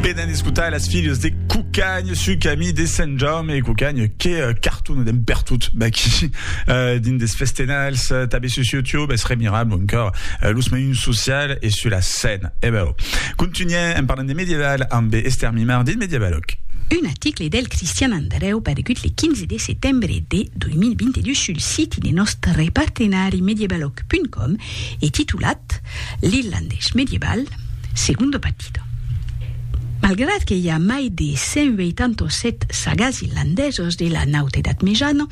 Benen escotar las filhas de Cucagn su camí de Sant Jaume e Cucagn que uh, carton d'en pertot d'aquí uh, dins des festenals uh, tabé sus YouTube es remirable encara uh, los meuns social e su la scène e eh beu continuem en parlant de medieval amb Esther Mimar dins Medievaloc un article del Cristian Andreu paregut le 15 de setembre de 2022 sul site de nostre partenari medievaloc.com e titulat L'Irlandés medieval, Segundo partido. Malgrat que i a mai de 187 sagas irlandesos de la Naut Edat Mejana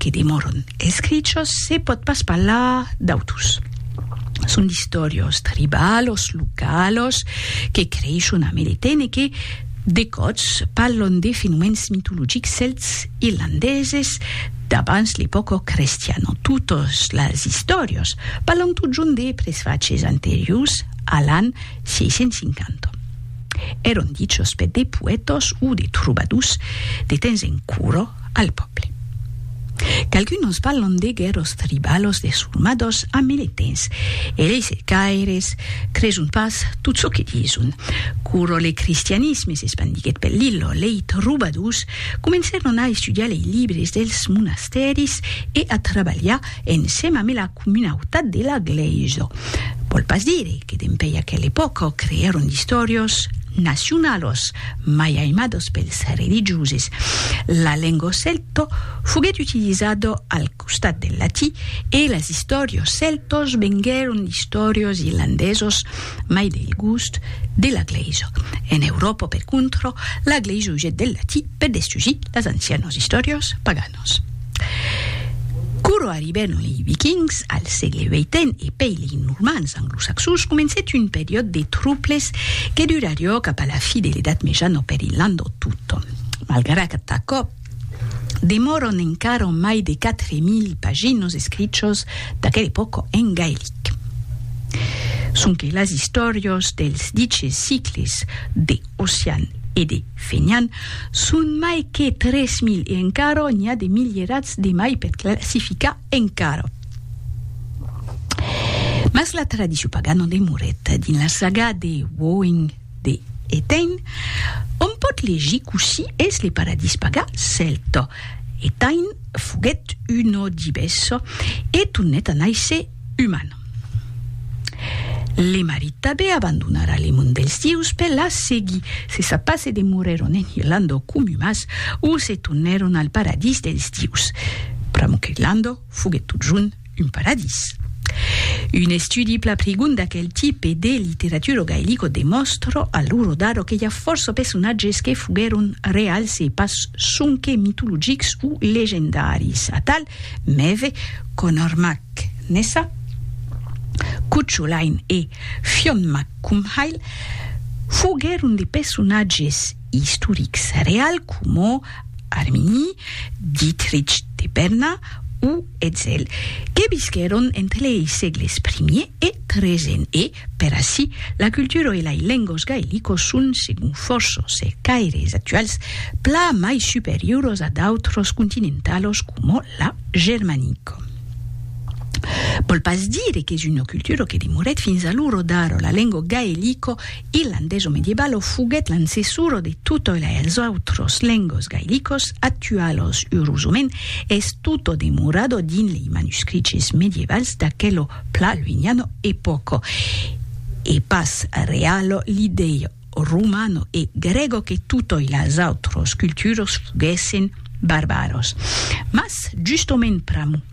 que demòron escrichos, se pòt pas parlar d'autus. Son d'istòrios tribalos, localos, que creishon a Meretene e que, de còps, parlon de fenomèns mitologics celts irlandeses, D'abans l'epòca crestiana. Totas las istòrias parlan totjorn de presfachés anteriors a l'an 650. Èran dichas per de poètas o de trobadors de temps en cura al pòble. Qualcunas parlan de guèrras tribalas desormadas a mile temps e lei cercaires creson pas tot çò que dison. Quora le cristianisme s'espandiguèt per l'illa, lei trobadors Comencèron a estudiar lei libres dels monastèris e a trabalhar ensèm ame la comunautat de la glèisa. Vòl pas dire que dempèi aquela epòca creèron d'istòrios nacionalos mai aimados pels religioses. La lenga celta foguèt utilizada al. costat del latí, e las istòrios celtos venguèron d'istòrios irlandesos mai del gust de la glèisa. En Euròpa, per contra, la glèisa usèt del latí per destrugir las ancianos istòrios paganos. Quora arribèron lei Vikings al sègle vii-ten e pei lei Normans anglosaxons, comencèt un periòd de truples que durarió cap a la fi de l'Edat Mejana per Irlanda tota. Malgrat aquò, Demòron encara mai de 4.000 paginos escrichos d'aquela epòca en gaelic. Sonque las istòrias dels diches sicles de Ossian e de Fenian son mai que 3.000 e encara n'i a de milierats de mai per classificar encara. Mas la tradicion pagana demorèt dins la saga de Woing. de Etain, òm pòt legir cossí es le paradís pagan celta, Etain foguèt uno dibes e tornèt a nàisser uman. Le marit tabé abandonara le mond dels dieus per la seguir, se sap pas se demorèron en Irlanda o comumas o se tornèron al paradís dels dieus, pr'amor qu'Irlanda foguèt totjorn un paradís. Un estudi pla prigon d'aquel tipe de literaturo gaelico demòstra a lo rodado que i a fòrça personatges que foguèron reals e pas sonque mitologics o legendaris, atal, Mève, Conor Mac Nessa, Cucho Lain e Fionn Mac Cumhaill, foguèron de personatges istorics reals coma Armini, Dietrich de Berna o Etzel, que visquèron entre lei sègles primier e tresen e, per ací, la cultura e lei lengos gaelicos son, segon fòrça cercaires actuals, pla mai superiuros a d'autros continentalos coma la germanica. Vòl pas dire qu'es una cultura que demorèt fins a l'ora d'ara, la lenga gaelicca Irlandés o medieval o foguèt l'ancessor o de tot oi els autros lengos gaelicos actualos urosament es tot o demorat o dins lei manuscriches medievals d'aquelo pla luiniano epòco e pas realo l'idei romano e grego que tot oi las autros culturos foguèssen barbaros mas justament pr'amor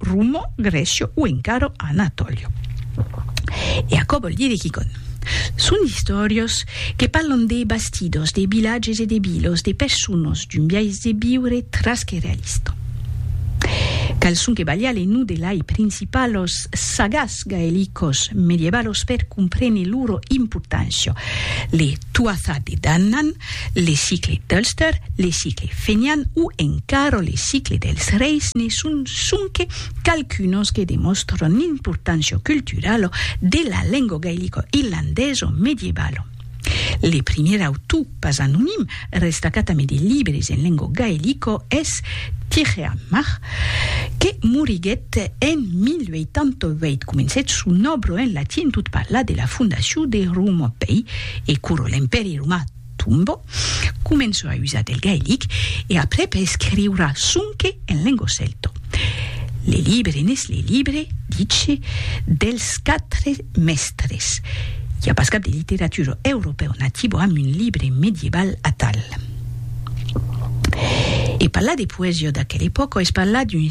Rumo, Grecio o encara Anatolio. E aquò vòl dire quicònh. Son d'istòrios que parlan de bastidos, de vilatges e de vilos, de personas, d'un biais de viure tras que realista. Qual son que valiá le nom de lai principalos sagats gaelicos medievalos per comprene loro importància? Le. Tuatha Dé Danann, le cicle d'Ulster, le cicle fenian o encara le cicle dels reis ne son sonque qualqu'unos que demòstran l'importància culturala de la lenga gailico-irlandesa medievalo. Le primièr autor pas anonim restacat amé de libres en lenga gailica es Tirchearmach, que moriguèt en 1088. Comencèt son òbra en latin tot parlar de la fondacion de Roma, pei e Curo l'empèri romà tombò, començò a usar del gaelic e aprèp a escriurar sonque en lengo celto. Le libre n'es le libre, dice, dels quatre mèstres. I a pas cap de literatura europèu nativo amb un libre medieval atal. E parlar de poesia d'aquela epòca es parlar d'un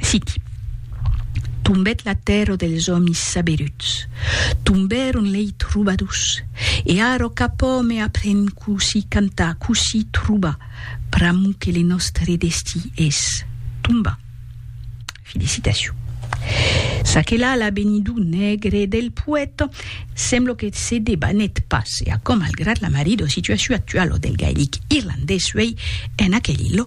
Siti. Tombèt la tèrra dels òmis saberuts. Tombèron lei trobadors. E ara cap òme aprèn cossí cantar, cossí trobar, pr'amor que le nòstre destí es tombar. Felicitacion. Ça que la la benidor negre del poèta. Semblo que se debanèt pas e aquò malgrat la marrido situaciu actualo del gaelic irlandés uei en aquel illo,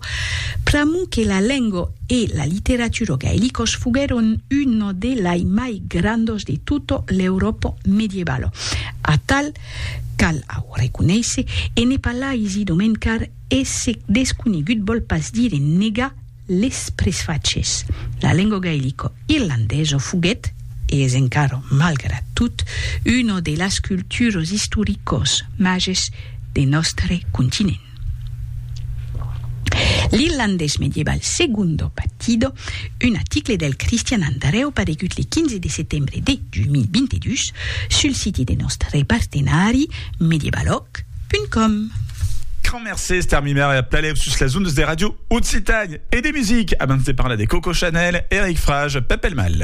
pr'amor que la lengo e la literaturo gaelicos foguèron uno de lai mai grandos de tuto l'Europo medievalo. Atal, cal au reconéisser, e ne parlaisi domencar e se desconegut vòl pas dire negar, Les presfachés, la lengo gaelico irlandeso foguèt, e es encara malgrat tot, una de las culturos istoricos mages de nòstre continent. L'irlandés medieval Segundo Batido, un aticle del Cristian Andrèu paregut le 15 de setembre de 2022 sul siti de nòstre partenari Medievalòg, Www.radiocausat.com Quand mercé estar mimèr e a plalev sus las ondas de Radio Occitània e de music abans de parlar de Coco Chanel, Eric Frage, Pepelmal.